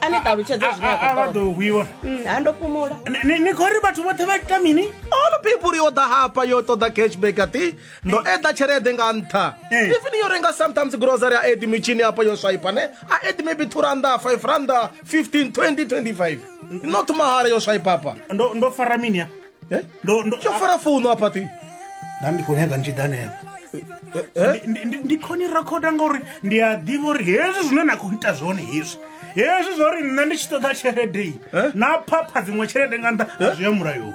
a ni ṱalutshedze zwine a- a- a vha a khou ḓo hwiwa ṱoḓa. ha ndo fhumula Ni- ni- ni khou ri vhathu vhoṱhe vha ita mini all people yo ḓa hafha yo ṱoḓa cashback ati ndo eḓa tshelede nga nṱha Eh. even yo renga sometimes grocery a edi mitshini hafha yo swaipa ne a edi maybe 2 randa 5 randa 15 20 25 not mahala yo swaipa hafha ndo ndo fara mini ya Eh? ndo ndo tsho fara founu a pati nda ndi khou nyaga ntshida hanefho eh? Ndi- ndi- ndi khoni rakhoda ngauri ndi a ḓivha uri hezwi zwine na khou ita zwone hezwi hezwi zwa uri nṋe ndi tshi ṱoḓa tshelede iyi Eh? na phapha dziṅwe tshelede nga nṱha a zwi ya mulayoni